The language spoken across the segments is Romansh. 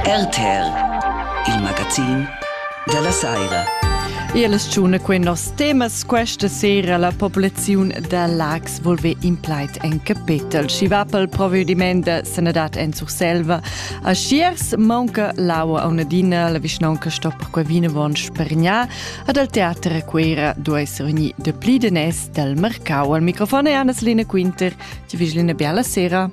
RTL, il magazin della sera. E la stagione quei nos temas questa sera la popolazione da Lax volve in plait en capital. Ci va pel provvediment de sanadad en Surselva. A Schiers manca l'aua a un'adina, la vicinanca sto perquai vinavon spergnar. Ad al teater a Quera due essere ogni de pli de nes dal mercau. Al microfon è Anna-Selina Quinter. Ti vigeli ina bella sera.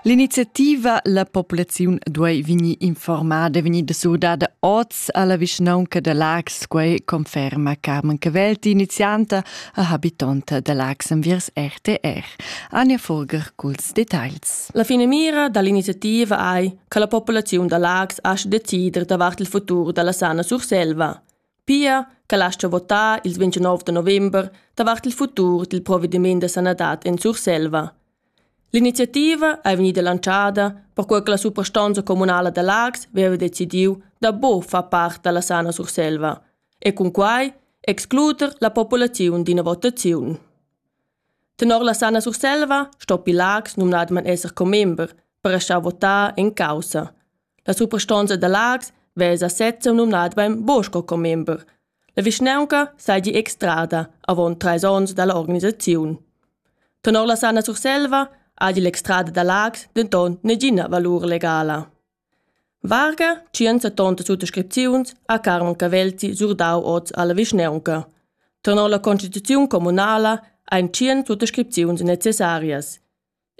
L'iniziativa La popolaziun duei vegnir informada, vegnir surdada oz alla vischnaunca da Lax, quei conferma Carmen Cavelti, inizianta e habitonta da Lax enviers RTR. Anja Furger culs details. La finamira dall'iniziativa ei che la popolaziun da Lax aschi decider davart il futur dalla sana Surselva. Pia che lascha votar ils 29 da november davart il futur dil provediment da sanadad en Surselva. L'iniziativa è vegnida lanciada perquai che la suprastonza communala da Lags aveva decidiu da bo far part dalla sana Surselva e cun quai excluder la populaziun d'ina votaziun. Tenor la sana Surselva sto Pilax numnadman esser commember per lasciar votar en caussa. La suprastonza da Laax vesa sezza numnadamain Bo sco commember. La vischnaunca seigi extrada avon treis onns dall'organisaziun. Tenor la Sanna Surselva hagi l'extrada da Laax denton negina valur legala. Varga, 170 suttascripziuns, ha Carmen Cavelti surdau oz alla vischnaunca. Tenor la constituziun communala ein 100 suttascripziuns necessarias.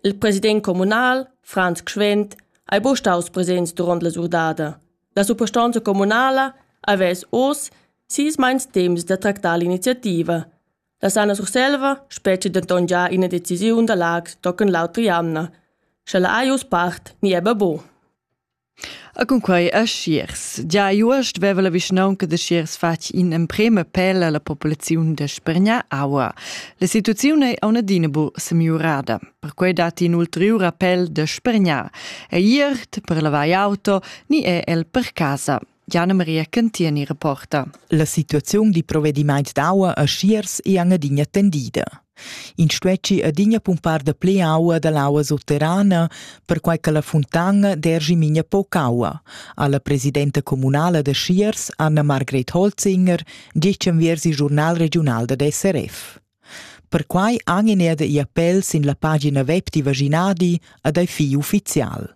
Il president communal, Franz Gschwend, ei buca staus presents duront la surdada. La suprastonza communala havess oz sis meins temps da tractar l'iniziativa. La Sanna Surselva spetga denton già ina decisiun da Laax tochen l'autra jamna. Sche la ei uss part ni ebbe bo. E cun quei aschiers. Gia igl uost veva la vischnaunca da Schiers fatg in'emprema appel alla populaziun da spregnar aua. La situaziun ei auna adina bu semiurada. Perquei dat in ulteriur appel da spregnar. Ei iert per lavar auto ni è el per casa. Janne-Maria Cantieni reporta. La situaziun di provedimaint d'aua a Schiers è adina tendida. In stuesci adina pumpar da ple aua da l'aua sotterrana, perquai che la fontana dergi minia poc aua, alla presidenta comunala da Schiers, Anna-Margret Holzinger, dice enviers il giornal regional da SRF. Perquai han in ed i appel sin la pagina web di Vaginadi ad ei fi ufficial.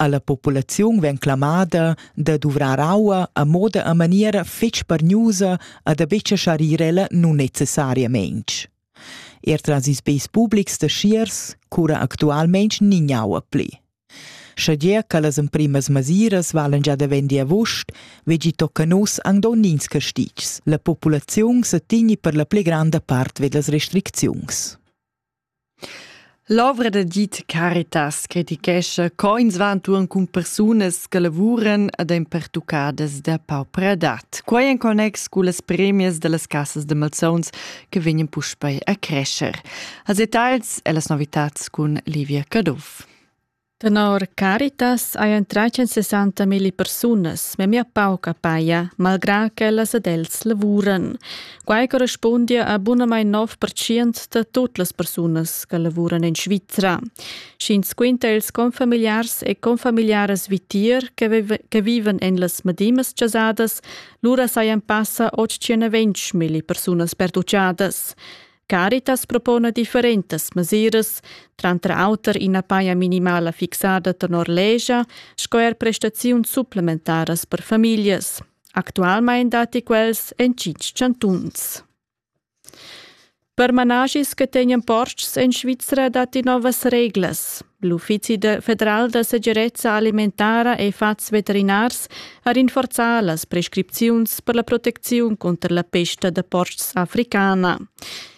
Alla populaziun vegn clamada da duvrar aua a moda a maniera fetg pargnusa e da betg schar ir ella nunnecessariamein. Er tras ils beis publics da schiers cura actualmein nin aua pli. Schagie che las emprimas masiras valen già da vendi avuost, vegi tocca nus ang donnins castitgs. La populaziun se tigni per la pli granda part vedas restricziuns. L'ovra da Git Caritas critichescha co ins va enturn cun persunas che lavuran ed ein pertuccadas da paupra edat. Quei en connex cun las premias dallas cassas da malsauns che vegnan puspei a crescer. Als detagls e las novitads cun Livia Caduff. Tenor Caritas hajan tratg sessanta milli persunas memia pauca paja, malgrà ch'ellas ed els lavuran. Quai correspundia a bunamain 9% da tut las persunas che lavuran en Svizra. Sch'ins quinta ils confamiliars e confamiliaras vitier che vivan en las medimas chasadas, lura sajan passa 820 milli persunas perduchadas. Caritas propona differentas mesiras, tranter auter ina paja minimala fixada tenor legia sco er prestaziuns supplementaras per famiglias. Actualmein datti quels en tschintg chantuns. Per managis che tegnan portgs en Svizra datti novas reglas. L'Uffizi federal da segirezza alimentara e fats veterinars ha rinforzà las prescripziuns per la protecziun cunter la pesta da portgs africana.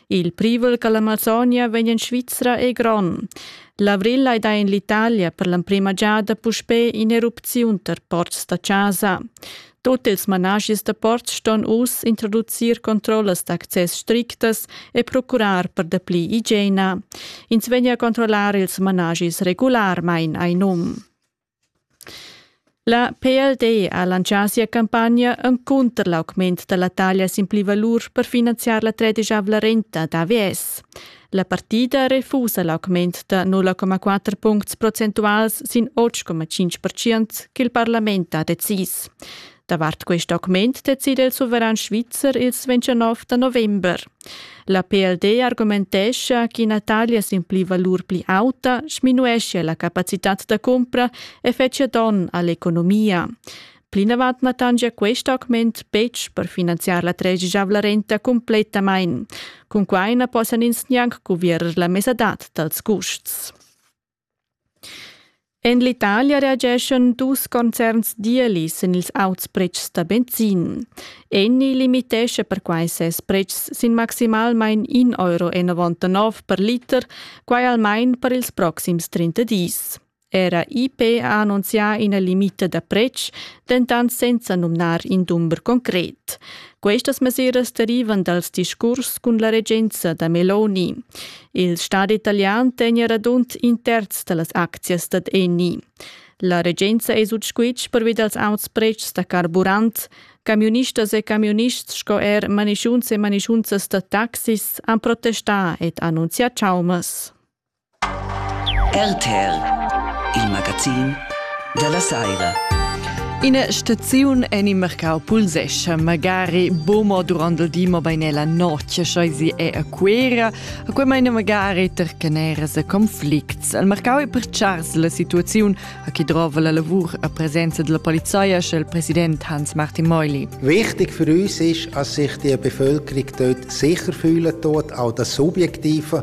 Il privel che l'Amazonia vegn en Svizra è grond. L'avril hai dà en l'Italia per l'emprima giada puspè in'erupziun tar ports da chasa. Tut ils managis da ports ston uss introducir controllas d'access strictas e procurar per dapli igiena. Ins vegn a controllar ils managis regularmain, hai num. La PLD ha lancià sia campagna encunter l'augment da la taglia sin plivalur per finanziar la tredisavla renta d'AVS. La partida refusa l'augment da 0,4 puncts procentuals sin 8,5 percent ch'il parlament ha decis. Davart quest augment decida il suveran svizzer il 29 da november. La PLD argumentescha ch'ina taglia sin pli valur pli auta sminuescia la capacitad da cumpra e fetschia donn all'economia. Plinavant na tangia quest augment betg per finanziar la tregiavla renta cumplettamain. Cun quai na possan ins gnanc cuvierer la mesadad dals custs. En l'Italia reageschan dus concerns dieuli sin ils auts pretschs da benzin. Enni limitescha perquai ses pretschs sin maximalmain 1,99 euro per liter, quai almain per ils proxims 30 dis. Era IP ha annunzià ina limita da pretsch, dentant senza numnar in dumber concret. Questas mesiras derivan dals discurs cun la regenza da Meloni. Il Stat italian tegna radund in terz da las aczias dad Eni. La regenza è sut squitsch pervi dals auts pretschs da carburant. Camiunistas e camiunists sco er manischunts e manischunzas da taxis han protestà ed annunzià chaumas. RTL, il magazin della saira. Ina staziun en il mercau pulsescha magari bomo durant il di, ma bein la notg, scheizi è a Cuera. A quei meine magari tercaneras e conflicts. Il mercau è per chars la situaziun a chi drova la lavur a presenza della polizia, sche il president Hans-Martin Meuli. Wichtig für uns ist, dass sich die Bevölkerung dort sicher fühlen tut, auch das Subjektive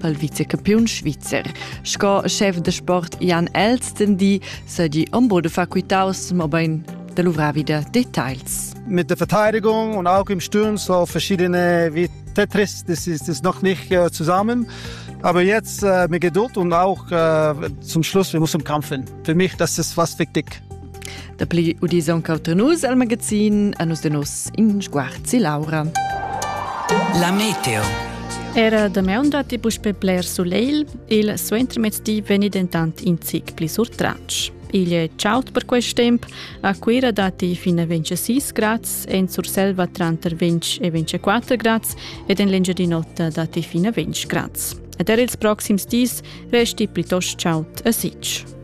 pel vicecampiun svizzer. Sco chef de sport Jan Elsten di se di ombo de facultaus, ma bein de luvrar wieder Details. Mit der Verteidigung und auch im Sturm so verschiedene wie Tetris, das ist, das ist noch nicht äh, zusammen. Aber jetzt äh, mit Geduld und auch äh, zum Schluss, wir müssen kämpfen. Für mich, das ist was wichtig. Dapli udis aunc auter nus al magazin a nus de nos in sguarzi Laura. La meteo. Era damaun datti puspe bler suleil, il suentermezdi veni dentant in zic pli surtratg. Igl è ciaut per quest temp, a Cuira datti fin a 26 grads, en Surselva tranter 20 e 24 grads ed en l'Engiadin'Ota datti fin a 20 grads. Ed er ils proxims dis resti plitost ciaut a Sitg.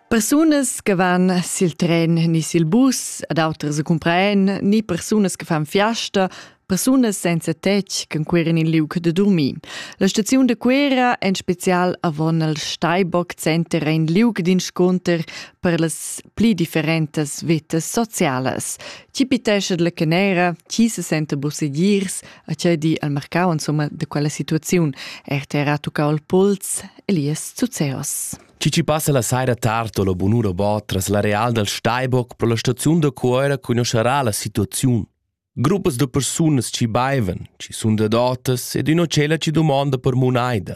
Persunas che van sil tren ni sil bus ad auters e cumpraen, ni persunas che fan fiasta, persunas senza tetg che cuiran in liug de dormir. La staziun de Cuera en spezial avon al Steinbock Center ein liug d'inscunter per las pli differentas vetas socialas. Ti pitescha la canera, ti se senta busegirs, a tgei di al marcau insomma de quella situaziun, er te era tuccau il puls, Elias Zuzeos. Cici passa la saira tard o la bunura bo tras la real dal Steinbock pro la staziun da Cuoira conoscerà la situaziun. Gruppas de persunas ci baivan, ci sunt adotas ed üna cella ci domonda per munaida.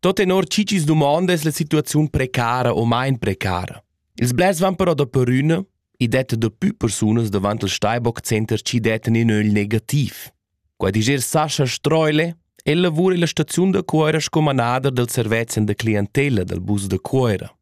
Tot tenor chi chi's dumonda es la situaziun precara o main precara. Ils blers van però daperüna e detta dapü persunas davant il Steinbock Center chi dettan in ögl negativ. Qua diger Sascha Streule, el lavura illa staziun da Cuoira sco manader del servezzan da clientella dal bus da Cuoira.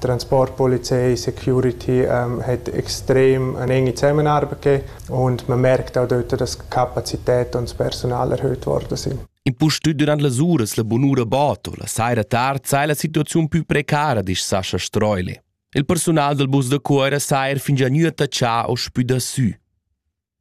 Transport, Polizei, Security ähm, hat extrem eine enge Zusammenarbeit gegeben und man merkt auch dort, dass die Kapazität und das Personal erhöht worden sind. Impustüt durant las uras la bunura Boto, la saira tard sai la situaziun più precara, dice Sascha Streule. Il personal del bus da Cuera sa er fingià gnü attachà o spü da sü.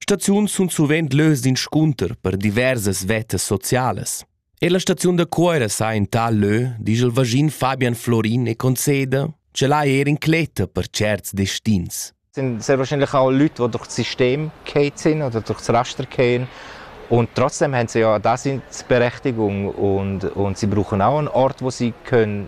Staziuns sun suvent lös d'inscunter per diversas vettas socialas. E la staziun da Cuoira sa in tal lö, disch il vaschin Fabian Florin e conceda, ch'el ha eir incletta per certs destins. sind sehr wahrscheinlich auch Leute, die durch das System gehen sind oder durch das Raster gehen. Und trotzdem haben sie ja das in Berechtigung und, und sie brauchen auch einen Ort, wo sie können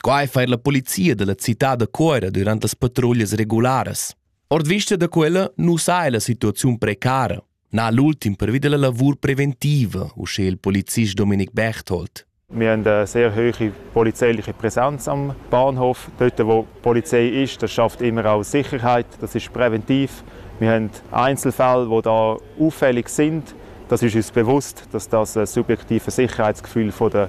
Quai fa er la polizia da la cità da Cuira durant las patruglias regularas. Ord vista da quella nu saja la situaziun precara. Na l'ultim pervi della lavur preventiva, uschè il polizist Dominik Berthold. Wir haben eine sehr hohe polizeiliche Präsenz am Bahnhof. Dort, wo Polizei ist, das schafft immer auch Sicherheit. Das ist präventiv. Wir haben Einzelfälle, die da auffällig sind. Das ist uns bewusst, dass das ein subjektives Sicherheitsgefühl von der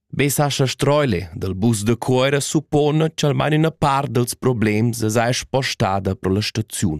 Messascha Streuler dal bus da Cuera suppona che almain üna part dals problems es eir spostada pro la staziun.